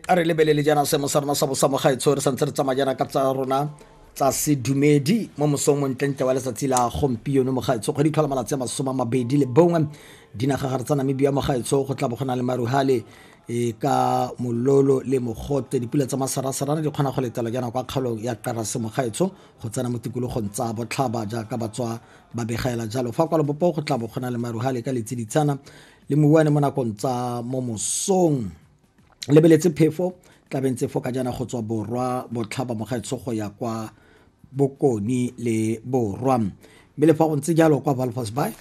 a re lebelele jaana seemo sa rona sa bosamogaetsho re santse re tsamaya jaana ka tsa rona tsa sedumedi mo mosong montlentle wa letsatsi la gompieno mogaetsho kgwedi tlhola malatsi a masome a mabedi le bongwe dinagagare tsa namibia mogaetsho go tla bo go na le maruhale e ka mololo le mogote dipula tsa masarasarana di kgona go letela jaana kwa kgaolong ya karase mogaetsho go tsena mo tikologong tsa botlhaba jaaka batswa ba begaela jalo fa kwa lebopo go tla bo go na le maruhale ka letsiditshana le mobuane mo nakong tsa mo mosong lebeletse phefo tlabeng tse fo ka jana go tswa borwa botlhaba mogaetsho go ya kwa bokoni le borwa mme le fa go ntse jalo kwa valfas by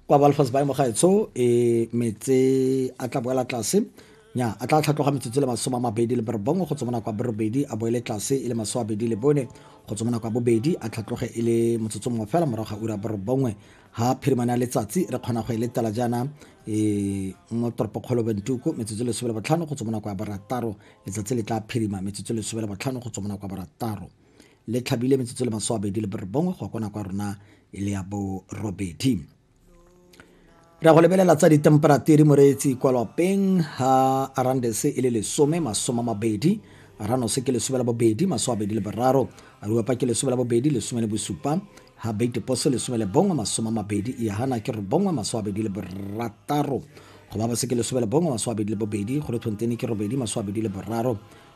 kwa valfas by mogaetsho e metse a tla boela tlase Nya, a tla tlhatloga metsotso le masome a mabedi le borobongwe go tswa mo nako ya borobedi a boele tlase e le masome a bedi le bone go tswa mo nako ya bobedi a tlhatloge e le motsotso mongwe fela morago ga ura borobongwe ga phirimane ya letsatsi re kgona go e letela jaana um mo toropokgolo bentuku metsotso e lesome le botlhano go tswa mo nako ya borataro letsatsi le tla phirima metsotso e lesome le botlhano go tswa mo nako ya borataro le tlhabile metsotso le masome a bedi le borobongwe go ya kwa nako ya rona e le ya borobedi re go lebelela tsa ditemperature moreetsi kwa lwapeng ha arandes e le lesome masome mabedi ranose ke lesome la bobedi masome abedi le boraro aruapa ke lesome la bobedi lesome le bosupa ha beitepose lesome le bongwe masome mabedi iahana ke robongwe masome abedi le borataro go ba bose ke lesome le bongwe masome abedi le bobedi go le thonteine ke robedi masome abedi le boraro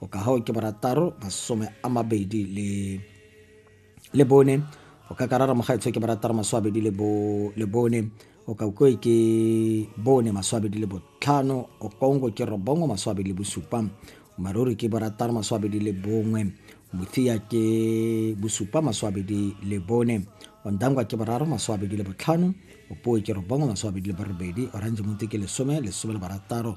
go ka gago ke borataro masome a mabedi le le bone go ka karara mogaetsho ke borataro maso abedi le bone o ka ukoe ke bone maso abedi le botlhano o kongo ke robongo maso abedi le bosupa maruri ke borataro maso abedi le bongwe mothia ke bosupa maso abedi le bone ondangwa ke boraro maso abedi le botlhano opoe ke robongo maso abedi le borobedi orange monte ke lesome lesome le barataro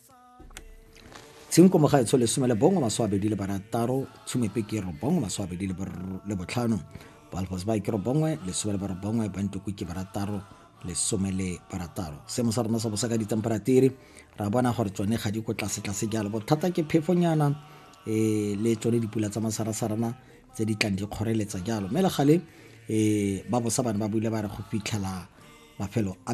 tshenko mogaetsho lesome le bongwe maswaabedi le barataro tshumepe ke robongwe maswaabedi le botlhano balfos ba ke robongwe lesome le barobongwe bantoko ke barataro lesome le barataro seemo sa rona sa bosa ka ditemperature ra bona gore tsone ga di ko tlasetlase jalo bothata ke phefonyana um le tsone dipula tsa masarasarana tse di tlang di kgoreletsa jalo mme le gale um ba bosa bane ba buile ba re go fitlhela mafelo a